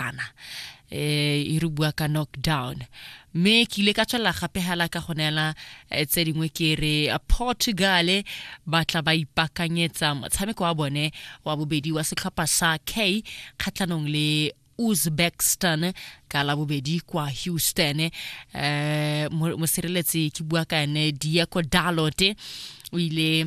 ratana eh e re bua ka knockdown mme ke ile ka tswelela gape hela ka go neela eh, tse dingwe ke re portugal ba tla ba ipakanyetsa motshameko wa bone wa bobedi wa setlhopha sa k kgatlhanong le uzbekistan ka la bobedi kwa houston um mosireletsi ke bua ka ene diego dalot o ile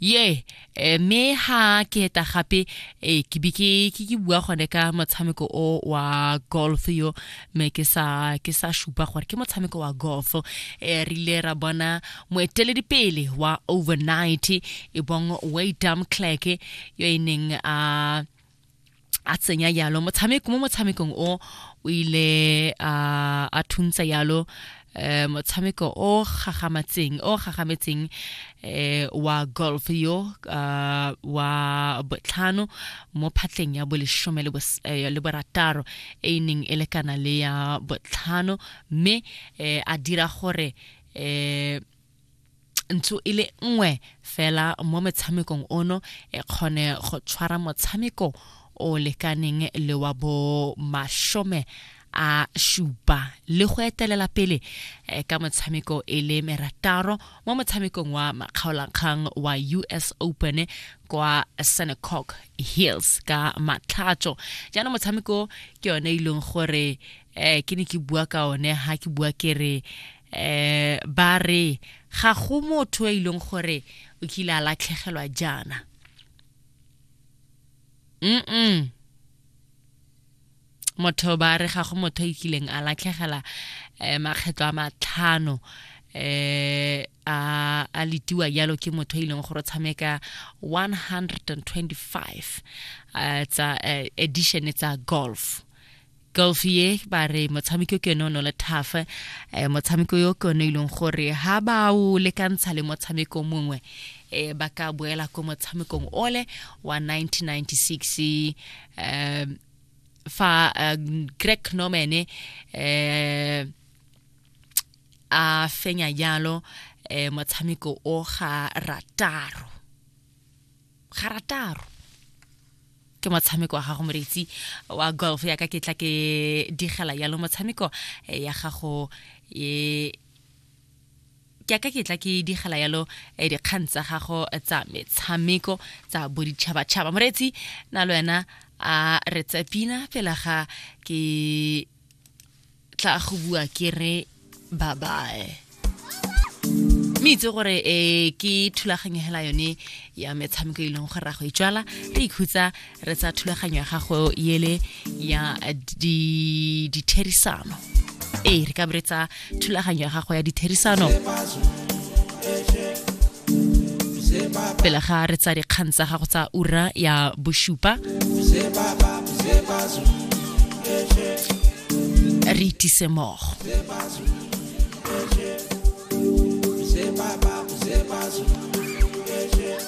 ye eh, mme ha ke eta gape eh, ke be ke ke ke bua gone ka motshameko o wa golf yo mme ke sa ke sa shupa gore ke motshameko wa golf eh, re ile ra bona moeteledipele wa overnight e bong waydam clark yo e neng a a tsenya yalo motshameko mo motshamekong o o ile a a thuntsa yalo eh motshameko o gagamatseng o gagametseng eh wa golf yo ah, wa botlhano mo phatleng ya boleshome le bos- eh, le borataro e e neng e lekana le ya botlhano mme eh, a dira gore eh ntsho e le nngwe fela mo metshamekong ono e kgone go tshwara motshameko o lekaneng le wa bo mashome a shupa le go etelela pele eh, ka motshameko e le merataro mo motshamekong wa makgaolakgang wa us open kwa senecock hills ka matlhatso jaanong motshameko ke yone e leng gore um ke ne ke bua ka one ha ke bua ke re eh ba re ga go motho e ileng gore o kile a latlhegelwa jaana mm motho ba re ga go motho e kileng a latlhegela eh, makgetlho a matlhano eh a a letiwa jalo ke motho e leng gore o tshameka 125 eh, tsa eh, edition tsa golf golf ye ba re motshameko ke yone o ne le tough um eh, motshameko yo ke yone e leng gore ga ba o lekantsha le motshameko mongwe um ba ka boela ko motshamekong ole wa 1996 um fa eh, greg norman um a fenya jalo um motshameko o ga rataro ga rataro ke motshameko wa gago moreitsi wa golf ya ka ke tla ke digela yalo motshameko eh, ya gago e ke aka ke tla ke digela yalo eh, dikgang tsa gago tsa metshameko tsa boditšhabatšhaba moreetsi na le wena a re tsepina fela ga ke tla go bua ke re bye bye mme itse gore um ke thulaganyo hela yone ya metshameko e leng gore ra go itswala re ikhutsa re tsa thulaganyo ya gago ele ya ditherisano ee re ka beretsa thulaganyo ya gago ya ditherisano pele ga re tsa dikgang tsa gago tsa ura ya bosupa re itise mogo Zebaba, Zebaba, Zebaba,